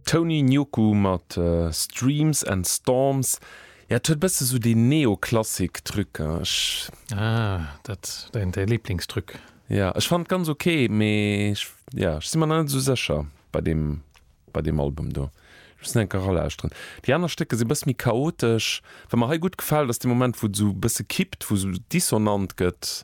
Tony Nyoku mat Streams and Storms, ja et huet e bësse esou dee Neoklassik Truc, ech. Ah, dat däin däi Liblingstruc. Ja, ech fannen et ganz ok, mee ech, ja ech si mer nach net esou sécher bei deem bei deem Album do. Ech muss en enker eralauschteren. Déi aner Stécker si e bësse méi chaotesch. Wat mer hei gutt gefält ass dee Moment wou et esou e bësse kippt, wou esou dissonant gëtt.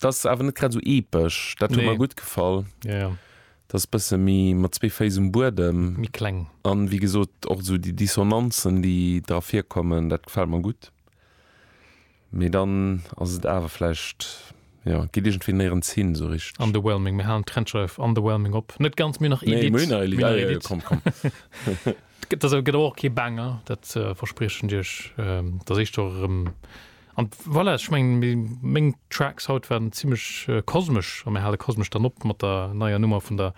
Dat ass awer net grad esou epesch. Dat huet mer gutt gefall. Dat ass e bësse méi mat zwee Féiss um Buedem. Méi kleng. A wéi gesot, och esou déi Dissonanzen, déi dra virkommen, dat gefält mer gutt. Mee dann ass et awer vläicht, jo, geet iergendwéi néierens hin esou richteg. Underwhelming. Mir halen d'Trennschreif underwhelming op. Net ganz, mir hunn nach Edit. Mir hunn nach Edit. Komm, komm. Dat gëtt awer och kee Banger, dat verspriechen Dir iech. Dat éischt och erëm. An voilà, ech mengen mi meng Tracks haut waren zimlech kosmesch a mir hale kosmesch dann op mat der neier Nummer vun der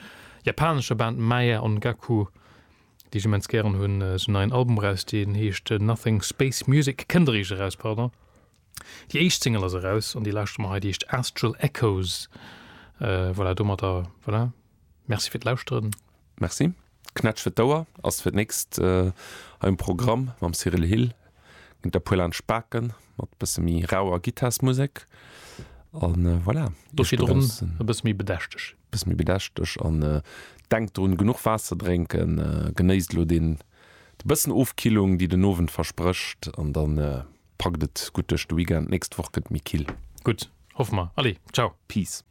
japanescher Band Maya Ongaku, déi ech immens gären hunn. Si hunn neien Album eraus, deen heescht Nothing Space Music, kënnt eréischt eraus, pardon. Déi éischt Single ass eraus an déi lauschtere mer hei, déi heescht Astral Echoes. Voilà, domadder voilà, Merci fir d'Lauschteren. Merci. D'Knätsch fir d'Ouer ass fir d'nächst hei um Programm. Mam Cyrille Hill ginn et e puer laanscht Baken mat e bësse méi rauer Gittarsmusek. A voilà, do schiet drun e bësse méi bedächteg. E bësse méi bedächteg. An denkt drun, genuch Waasser drénken. Genéisst elo dee bëssen Ofkillung, déi den Owend versprécht. An da packt et gutt duerch de Weekend. D'nächst Woch gëtt et méi kill. Gutt, hoffe mer. Allez, ciao. Peace.